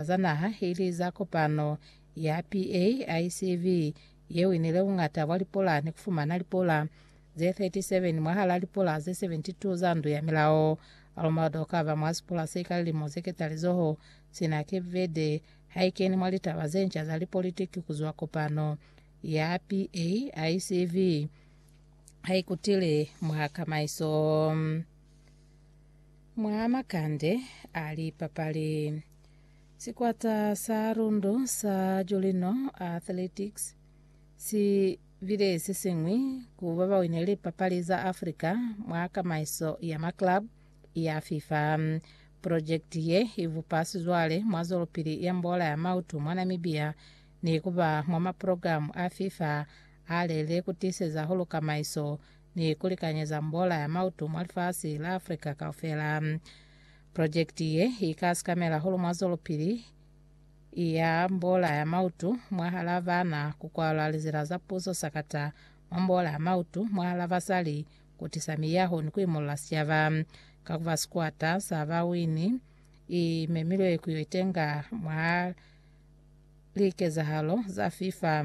za naha ili za kopano ya PAICV yeo inile bungata bwa lipola ni kufumana lipola ze 37 mwahala lipola ze 72 za ndu ya milao. Almado kaba mwa sipola se ka lilimo ze ketalizoho, sina Cape Verde haikeni mwa litaba ze nca za lipolitiki kuzwa kopano ya PAICV haikutile mwa kamaiso. Mwa makande a lipapali, sikwata sa Rundu sa Jolino Athletics si bile se siñwi ku ba ba wine lipapali za Africa mwa kamaiso ya maclub ya FIFA. Projekiti ye i bupa sizwale mwa zwelopili ya mbola ya mautu mwa Namibia ni ku ba mwa maprogramu a FIFA a lele ku tiiseza hulu kamaiso ni ku likanyeza mbola ya mautu mwa lifasi la Africa kaufela. Projekiti ye i ka sikamela hahulu mwa zwelopili ya mbola ya mautu mwahal'a bana, ku kwalwa lizila za puso sakata mwa mbola ya mautu mwahal'a basali, ku tisa miyaho ni ku imolola sicaba. Ka ku ba sikwata sa bawini, i memilwe ku yo itenga mwa likezahalo za FIFA.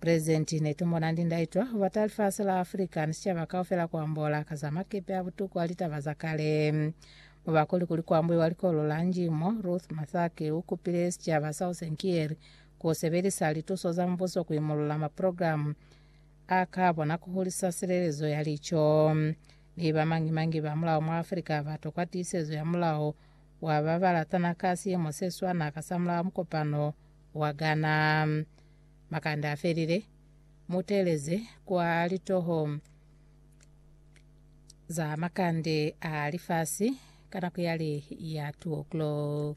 Present, Netumona ndi ndaitwa kubata lifasi la Africa ni sicaba kaufela kuambola ka za makepe a butuku a litaba za kale. Muba kuli kuli kuambuiwa likolo la nji mo, Ruth Mathake ukupile sicaba sa Osenkieri kusebelisa lituso za mubuso kuimulula maprogramu a ka bona kuhulisa silelezo ya lico. Mi bamangi mangi ba mulao mwa Africa batokwa tiisezo ya mulao wa babalatana ka siimo seswana ka samulaho mukopano wa Ghana. Makanda a felile, mu teeleze kwa litoho za makande a lifasi ka nako yale ya 2 o'clock.